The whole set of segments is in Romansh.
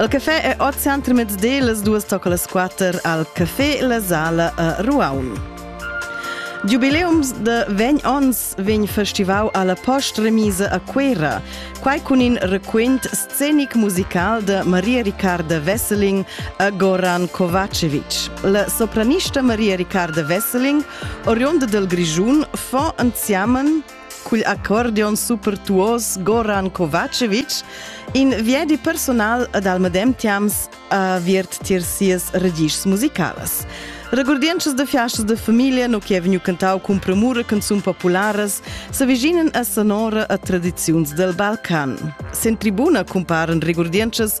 Il café è oz center mezdi las duas tocca las quatter al Café La Sala a Ruaun. Giubileums de vegn ons vegn festival alla post-remise a Cuera, quai cun in requint scenic musical de Maria Ricarda Wesseling a Goran Kovacevic. La sopranista Maria Ricarda Wesseling, oriunda del Grigiun, fa anziamen Cugl accordion supertuos Goran Kovacevic, in viedi personal ed al medem tiams aviert tier sias regischs musicalas. Regurdientschas de fiastas de familia no che vegnu cantau cun premura canzun popularas s'avvicinen a sonora a tradiziuns del Balcan. Sen tribuna cumparen regurdientschas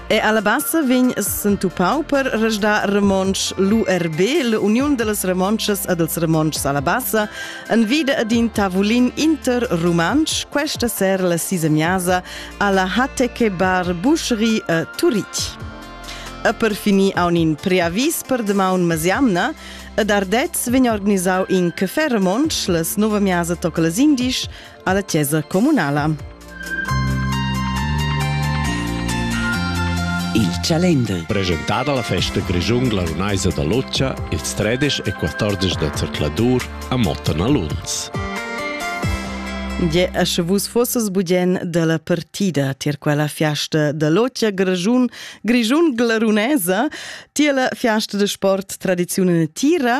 E alla bassa vegn s'entupau per resdar romontsch l'URB, l'Uniun dellas Romontschas e dels Romontschs alla bassa, en vide ad in tavulin interrumantsch, questa sera la sisemiasa alla Hateke Bar Boucherie a Turitg. E per finir a un preavis per demaun mesiamna, ed Ardez vegn organisau in café romontsch les nova miasa toca les indisch alla chiesa communala. Il Chalender. Presentada la festa Grischun glarunaisa da Loccia ils 13 e 14 da zercladur a Motten a Lunz. Gie, sche vus fosses bugen della partida tier quella fiasta da Loccia Grischun, Grischun glarunesa, tier la fiasta de sport tradizione tira,